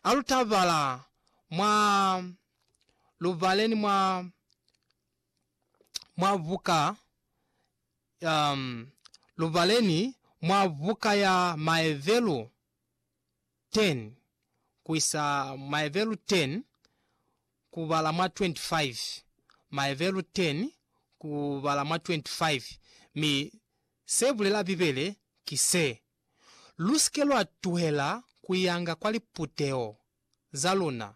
A lu tabala mwa lu bale ni mwa mwa buka um, lu bale ni mwa buka ya Maevelu 10 ku isa Maevelu 10 ku bala mwa 25, Maevelu 10 ku bala mwa 25. Mi se bulela Bibele ki se, Lu si ke lwa tuhela ku yanga kwa liputeho za luna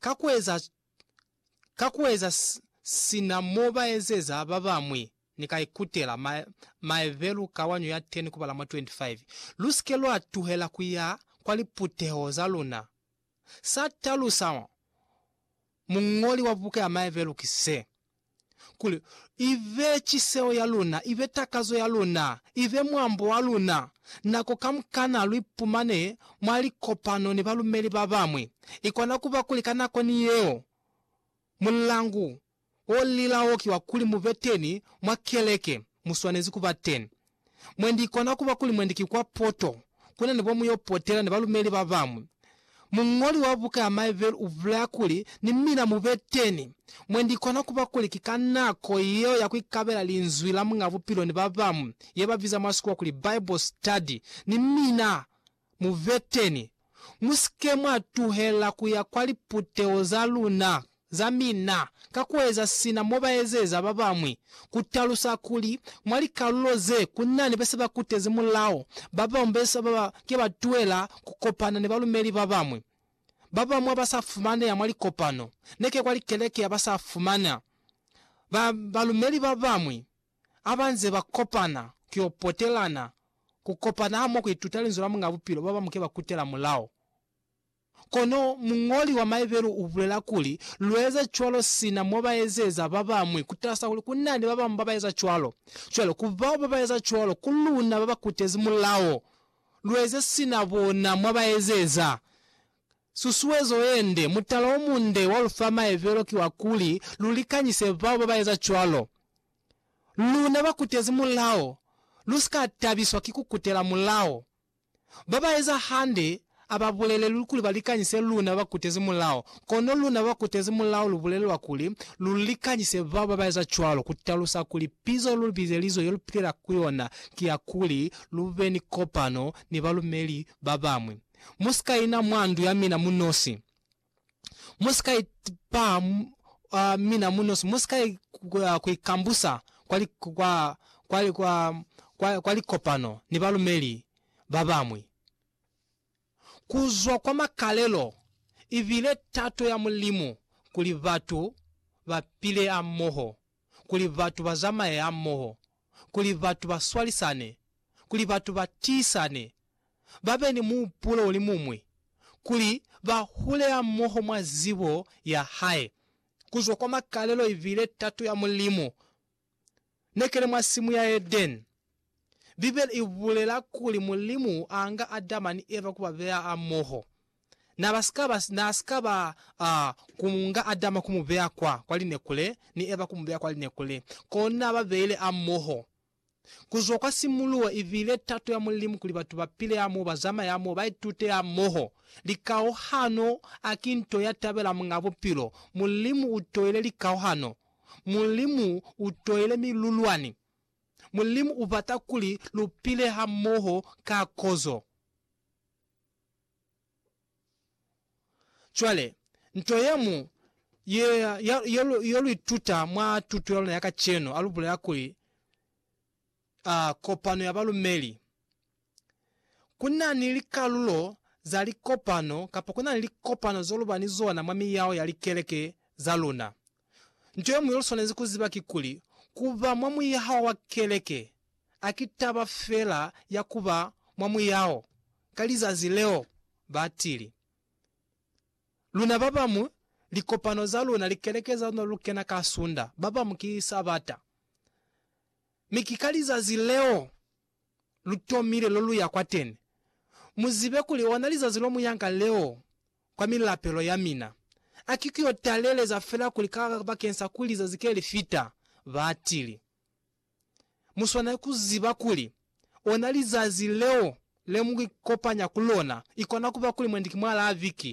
ka ku eza ka ku eza sina mo ba ezeza ba bañwi. Ni ka ikutela maebelu ka wanyu ya 10 kubala mwa 25, Lu si ke lwa tuhela ku ya kwa liputeho za luna. Sa talusa muñoli wa buka ya Maebelu ki se, kuli i be ciseo ya luna, i be takazo ya luna, i be mwambo wa luna. Nako kamukana lu ipumane mwa likopano ni balumeli ba bañwi, i kona ku ba kuli ka nako ni yeo mulangu wo lila wo ki wa kuli mu be teni mwa keleke, mu swanezi ku ba teni. Mwendi ikona kuba kuli mwendi ki kwa poto kuna nebo muyo potela ni balumeli babañwi. Muñoli wa buka ya Maeville ubulaya kuli, Ni mina mube teni. Mwendi ikona kuba kuli ki ka nako yeo ya kuikabela Linzwi la Muñ'a Bupilo ni babañwi, yebabiza mwa sikuwa kuli Bible study, ni mina Muveteni, musike mwa tuhela kuya kwa liputeho za luna za mina ka kueza sina mobaezeza babañwi, kutalusa kuli mwa likalulo ze kunani bese bakutezi mulao, babañwi bese baba ke ba tuhela kukopana ni balumeli babañwi, babañwi baba sa fumaneha mwa likopano, neke kwa likeleke yaba sa fumana ba balumeli babañwi ha ba nze ba kopana ku yo potelana, ku kopana hamoho ku ituta Linzwi la Muñ'a Bupilo, ba bañwi ke ba kutela mulao. Kono muñoli wa Maebelu u bulela kuli, Lu eza cwalo sina mo ba ezeza ba bañwi, ku talusa kuli ku na ni ba bañwi ba ba eza cwalo. Cwale, ku bao ba ba eza cwalo, ku luna ba ba kutezi mulao, lu eze sina bona mwa ba ezeza. Susuezo ye nde. Mutala o munde wa lu fa maebelo ki wa kuli lu likanyise bao ba ba eza cwalo. Luna ba kutezi mulao, lu si ka tabiswa ki ku kutela mulao. Ba ba eza hande a ba bulelelwi kuli ba likanyise luna ba kutezi mulao, kono luna ba kutezi mulao lu bulelelwa kuli lu likanyise bao ba ba eza cwalo, ku talusa kuli pizo ye lu bizelizwe ye lu pilela ku yona ki ya kuli lu be ni kopano ni balumeli ba bañwi. Mu si ka ina mwa ndu ya mina mu nosi. Mu si ka ipaha mwa mina mu nosi. Mu si ka ku ikambusa kwa likopano ni balumeli ba bañwi. Ku zwa kwa makalelo, i bile tato ya Mulimu kuli batu ba pile hamoho kuli batu ba zamaye hamoho, kuli batu ba swalisane, kuli batu ba tiisane, ba be ni muhupulo o li muñwi, kuli ba hule hamoho mwa zibo ya hae, ku zwa kwa makalelo ibile tato ya Mulimu. Ne kene mwa simu ya Edeni. Bibele i bulela kuli Mulimu a nga Adama ni Eva ku ba beya hamoho. Na ba si ka ba, na si ka ba, a, ku nga Adama ku mu beya kwa, kwa lineku le, ni Eva ku mu beya kwa lineku le. Kono na ba beile hamoho. Ku zwa kwa simuluho, i bile tato ya Mulimu kuli batu ba pile hamoho, ba zamaye hamoho, ba itute hamoho. Likauhano a ki nto ya tabela Muñ'a Bupilo. Mulimu u toile likauhano. Mulimu u toile milulwani. Mulimu u bata kuli lu pile hamoho ka kozo. Cwale, nto ye ñwi ye, ye, ye, lu, ye lu ituta mwa tuto ya luna ya kacenu, a lu bulela kuli, a, kopano ya balumeli. ku na ni likalulo za likopano kapa ku na ni likopano zo lu ba ni zona mwa miyao ya likeleke za luna. Nto ye ñwi yo lu swanezi ku ziba kikuli, ku ba mwa muyao wa keleke a ki taba fela ya ku ba mwa muyao ka lizazi leo ba tili. Luna ba bañwi, likopano za luna, likeleke za luna lu kena ka Sunda, ba bañwi ki Sabata. Mi ki ka lizazi leo! lu tomile lo lu ya kwa tene, mu zibe kuli ona lizazi lo mu yanga leo kwa milapelo ya mina. A ki ku yo taleleza fela kuli ka bakeng sa kuli lizazi ke li fita, ba tili. Mu swanela ku ziba kuli ona lizazi leo le mu ikopanya ku lona, i kona ku ba kuli mwendi ki mwalaa viki,